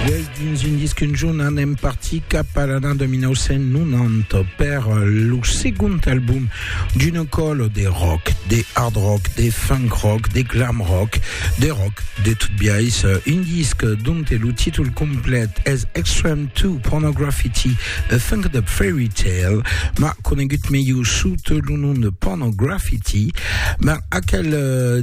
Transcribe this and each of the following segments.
Uèi, dins un disc un jorn, anem partir cap a l'ana 1990 per lo segond album d'una còlo de rock, de hard rock, de funk rock, de glam rock, de rock de tot biais, un disc donte lo títol complet es Extreme 2 Pornograffiti, A Funked Up Fairy Tale, ma conegut melhor sota lo nom de Pornograffiti, ma aquel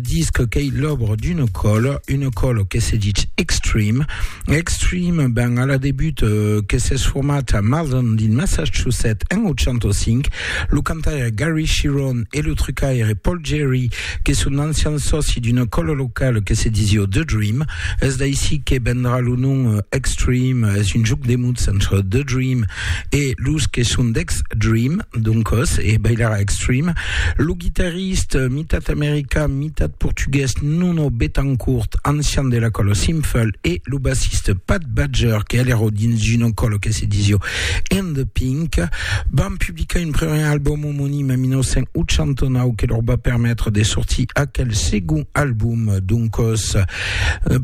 disc qu'ei l'òbra d'una còlo, Una còla que se ditz Extreme. Extreme, ben, a la debut, que s'es format a Malden, dins Massachusetts, en 85. Lo cantaire Gary Cherone e lo trucaire Paul Gerry, que son d'ancians sòci d'una còla locala que se disiá The Dream. Es d'aicí que vendrà lo nom Extreme, es un jòc de mots entre The Dream e los que son d'Extreme, doncas, e bailarà Extreme. Lo guitarrista Artist, mitat american, mitat portugués, Nuno Bettencourt, ancian de la còlo Simfel, e lo bassist Pat Badger, que alero dins d'una còlo que se disio In The Pink, van publicar un primièr album omonim en 1989 que lor va permetre de sortir aquel segon album, doncòs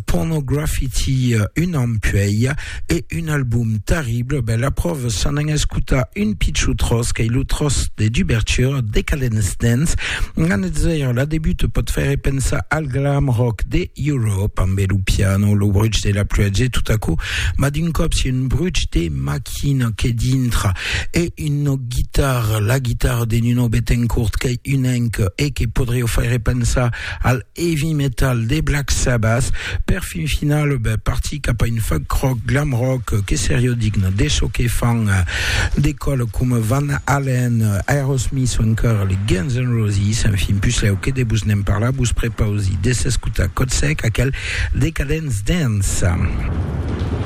Pornograffiti un an puèi. E un album terrible, ben la pròva s'an an escotar un pichou tròç qu'ei lo tròç de dubertura, Decadence Dance, an de zèira la debuta pòt faire pensar al glam rock de Europe, ambe lo piano, lo bruch de la pluèja e tot aquò, mas d'un còp si un bruch de maquina que dintra e una guitarra, la guitarra de Nuno Bettencourt qu'ei un enc e que podriá faire pensar al heavy metal de Black Sabbath, per fin final partir cap a un funk rock, glam rock que seriá digne de çò que fan de còles coma Van Halen, Aerosmith o encara les Guns N' Roses. Enfin, puslèu que de vos ne'n parlar, vos prepausi de s'escotar còt sec aquel Decadence Dance.